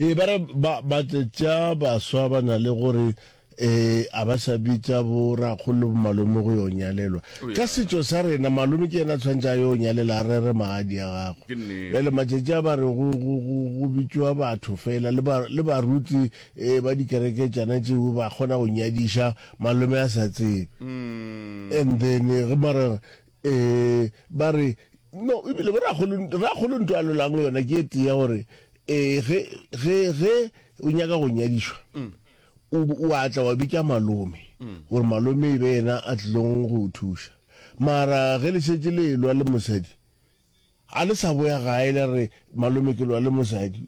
Ee, ba re ba batletša baswa ba na le gore e a ba sa bitša bo rakgolo le bomalome go yo nyalelwa ka setšo sa rena malome ke yena a tshwanetse a yo nyalela a rere magadi ya gago bjale matšatši a ba re go bitšwa batho fela le baruti um ba dikereketšana tšeo ba kgona go nyadiša malome a sa tsebe mm. and then ge mara Ee, ba re, No, ebile Rrakgolo, Rrakgolo nto a lolago yona ke e tee ya gore, ee, ge, ge, ge o nyaka go nyadišwa, o, o a tla wa bitša malome, gore malome e be yena a tlilong go o thuša. Mara ge le šetše le elwa le mosadi, Ga le sa boya gae la re malome ke lwa le mosadi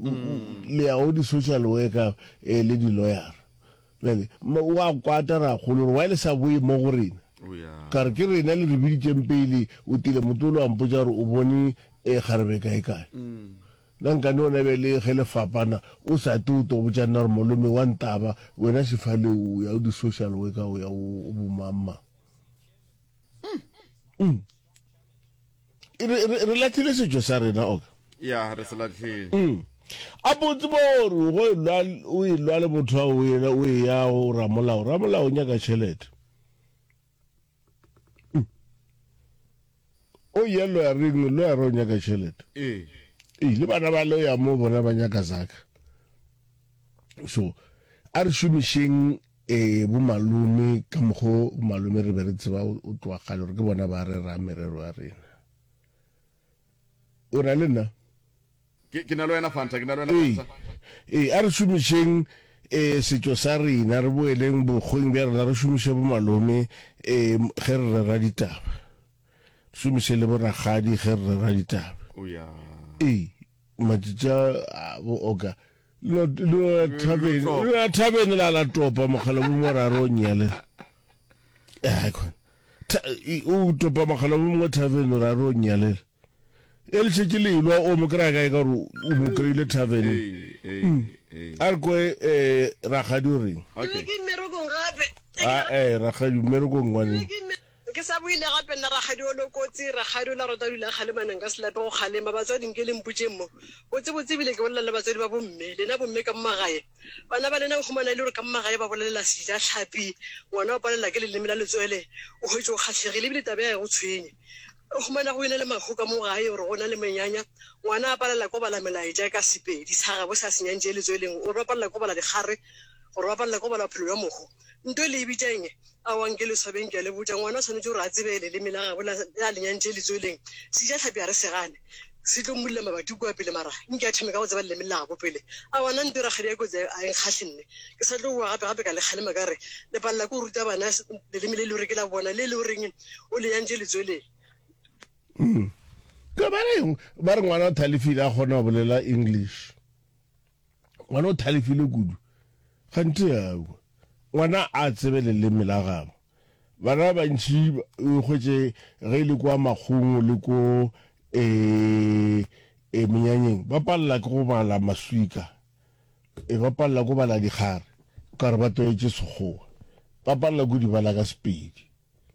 le ya go di-social worker eh, le di-lawyer-a. Bjale m- wa kwata rakgolo gore why le sa boye mo go rena. O ya. Ka re ke rena le re biditšeng pele, o tile motolo wa mpotša gore o bone eh, kgarebe kae-kae. Na nkane ona bjale ge le fapana o sa te o to botša nna gore malome wa ntaba wena sefale o ya go di-social worker o ya go bomang-mang. re latlhile setšo sa rena oka ya re se latlhile mm. a botse bo gore go o e lwa le motho ao o e ya go ramolao ramolao o nyaka tšhelete mm. o ye loya reng loya re o nyaka tšhelete ee le bana ba loya mo bona ba nyaka zaka so a re šomišeng Ee, bomalome, ka mokgwa wo bomalome re be re tseba o tloga kgale gore ke bona ba rerang merero ya rena. O na le nna? Ke, ke na le wena, Fanta, ke na le wena, Ee, Fanta. ee, a re šomišeng ee, setšo sa rena, re boeleng bokgweng bja rena, re šomiše bomalome ee, ge re rera ditaba, re šomiše le borakgadi ge re rera ditaba. O ya. Ee. Matšatši a bo oka lo lo thabeng lo thabeng la la topa mogala bo mo ra ro nyale. Eh kon. O topa mogala bo mo thabeng ra ro nyale. E le tšetše le ilwa o mo kra ga e ka ro o mo kreile thabeng. Hmm. A re ko eh ra ga di reng. Okay. Ah eh ra ga di mero go ngwane. Ke sa buile gape nna Rakgadi Olo Kotsi, Rakgadi Ola Rota Dula Kgalemaneng ka Selape go kgalema. Batswadi nke le mpotšeng mo. Botsebotse e bile ke bolela le batswadi ba bomme. Lena bomme ka mo magae. Bana ba lena o humana e le gore ka mo magae ba bolelela sejatlhapi. Ngwana o palela ke leleme la letswele. O hwetše o kgahlegile e bile taba ya gae go tshwenye. O humana go ena le mahu ka mo gae gore go na le menyanya. Ngwana a palela ko bala melaetša ka Sepedi sa gabo se a se nyantšee letsweleng gore ba palela ko bala dikgare, gore ba palela ko bala bophelo bja mohu. Nto e le e bitša eng? Aowa, nke le swabeng, ke a le botša. Ngwana o swanetše gore a tsebe leleme la gabo la, a le nyantše letsweleng. Sejahlapi ga re se gane, se tlo mmulla mabati kua pele, mara nke a thome ka go tseba leleme la gabo pele. Aowa, nna nto e rakgadi ya kotsi a e nkgahle nne. Ke sa tlo boa gape-gape ka le kgalema ka re le palela ke go ruta bana leleme le e le gore ke la bona, le e le goreng o le nyantše letsweleng. Ke ba reng? Ba re ngwana o thalefile a kgona go bolela English. Ngwana o thalefile kudu. Kganthe aowa. Ngwana a tsebe leleme la gabo. Bana ba bantši o ikgwetše ge e le kwa makgongo le ko e, e menyanyeng ba palela ke go bala maswika, e ba palela ko bala dikgare, o ka re ba tlwaetše Sekgowa. Ba palela ko di bala ka Sepedi.